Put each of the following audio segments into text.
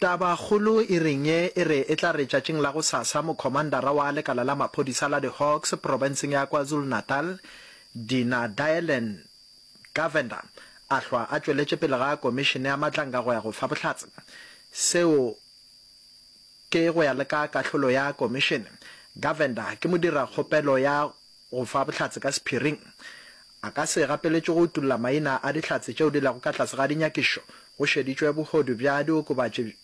Tabakgolo e reng ye e re e tla re tšatšing la gosasa mokhomandara wa lekala la maphodisa la di-Hawks profenseng ya KwaZulu-Natal, Dina Dylan Govender a hlwa a tšweletše pele ga komišene ya matlanga go ya go fa bohlatse. Seo ke go ya le ka kahlolo ya komišene. Govender ke modirakgopelo ya Go fa bohlatse ka sephiring. A ka se gapeletšwe go utolla maina a dihlatse tšeo di lego ka tlase ga dinyakišo go šeditšwe bohodu bja diokobatši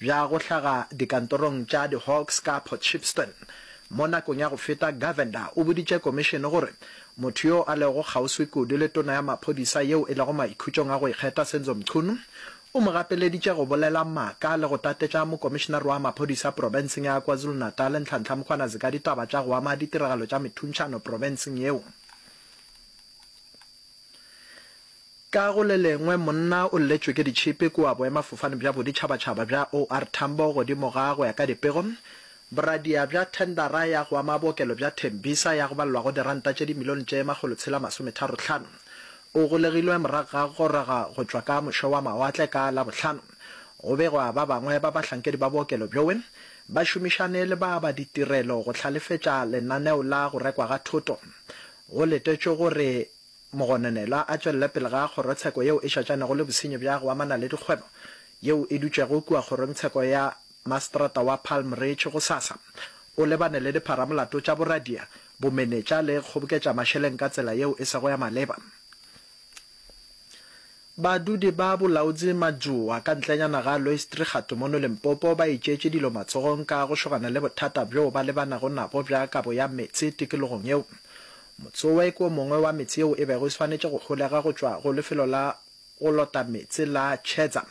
bja go hlaga dikantorong tša di-Hawks ka Port Shepstone. Mo nakong ya go feta, Govender o boditše komišene gore motho yo a lego kgauswi kudu le tona ya maphodisa yeo e lego maikhutšong a go ikgetha Senzo Mchunu O mo gapeleditše go bolela maaka le go tatetša mokomišenare wa maphodisa profenseng ya KwaZulu-Natal, Nhlanhla Mkhwanazi ka ditaba tša go ama ditiragalo tša methuntšhano profenseng yeo. Ka go le lengwe, monna o lletšwe ke ditšhipi kua boemafofane bja boditšhabatšhaba bja OR Tambo godimo ga, go ya ka dipego, boradia bja thendara ya go ama bookelo bja Tembisa ya go balelwa go diranta tše dimilione tše makgolo tshela masometharo tlhano. O golegilwe morago ga go goroga go tšwa ka moše-wa-mawatle ka Labohlano. Go begwa ba bangwe ba bahlankedi ba bookelo bjoe ba šomišane le ba ba ditirelo go hlalefetša lenaneo la go rekwa ga thoto. Go letetšwe gore mogononelwa a tšwelele pele ga kgorotsheko yeo e šatšanego le bosenyi bja go amana le dikgwebo yeo e dutšego kua kgorongtsheko ya maseterata wa Palm Ridge gosasa. O lebane le dipharamolato tša boradia Bomenetša le kgoboketša mašeleng ka tsela yeo e sego ya maleba. Badudi ba Bolaodzi Madjoa ka ntlenyana ga Loistrigatu mono Limpopo ba itšeetše dilo matsogong ka go šogana le bothata bjoo ba lebanago nabo bja kabo ya meetse tikologong yeo. Motsoe ke o mongwe wa meetse yeo e bego e swanetše go holega go tšwa go lefelo la go lota meetse la Chedza.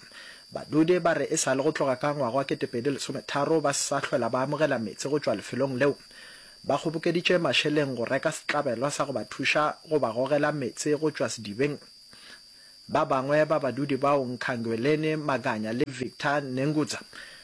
Badudi ba re e sa le go tloga ka ngwaga wa 2013 ba sa hlwela ba amogela meetse go tšwa lefelong leo. Ba kgobokeditše mašeleng go reka setlabelo sa go ba thuša go ba gogela meetse go tšwa sedibeng. Ba bangwe ba badudi bao Nkhangweleni Maganya le Victor Nengudza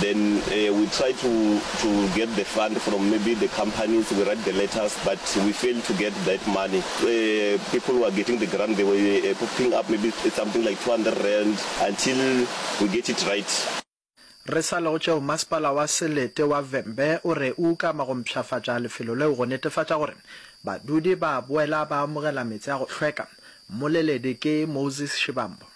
then we try to to get the fund from maybe the companies we write the letters but we fail to get that money people who are getting the grant they were picking up maybe something like 200 rand until we get it right. Re sa le go tšeo, masepala wa Selete wa Vhembe o re o ukama go mpshafatša lefelo leo go netefatša gore badudi ba boela ba amogela meetse a go hlweka. Mmoleledi ke Moses Shivambu.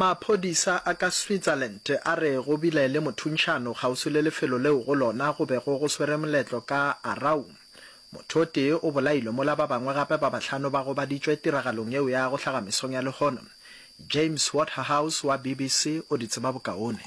Maphodisa a ka Switzerland a re go bile le mothunšano kgauswi le lefelo leo go lona go bego go swere moletlo ka Aarau. Motho o tee o bolailwe mola ba bangwe gape ba bahlano ba gobaditšwe tiragalong yeo ya go hlaga mesong ya lehono. James Waterhouse wa BBC o di tseba bokaone.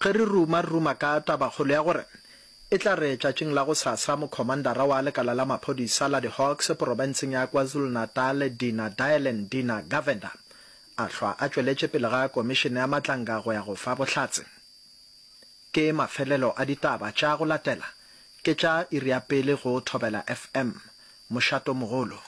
Ge re ruma, re ruma ka tabakgolo ya gore e tla re tšatšing la gosasa Mokhomandara wa lekala la maphodisa la di-Hawks porofenseng ya KwaZulu-Natal, Dina Dylan, Dina, Govender, a hlwa a tšweletše pele ga Komišene ya Matlanga go ya go fa bohlatse. Ke mafelelo a ditaba tša go latela, ke tša iri ya pele go Thobela FM. Mošato mogolo.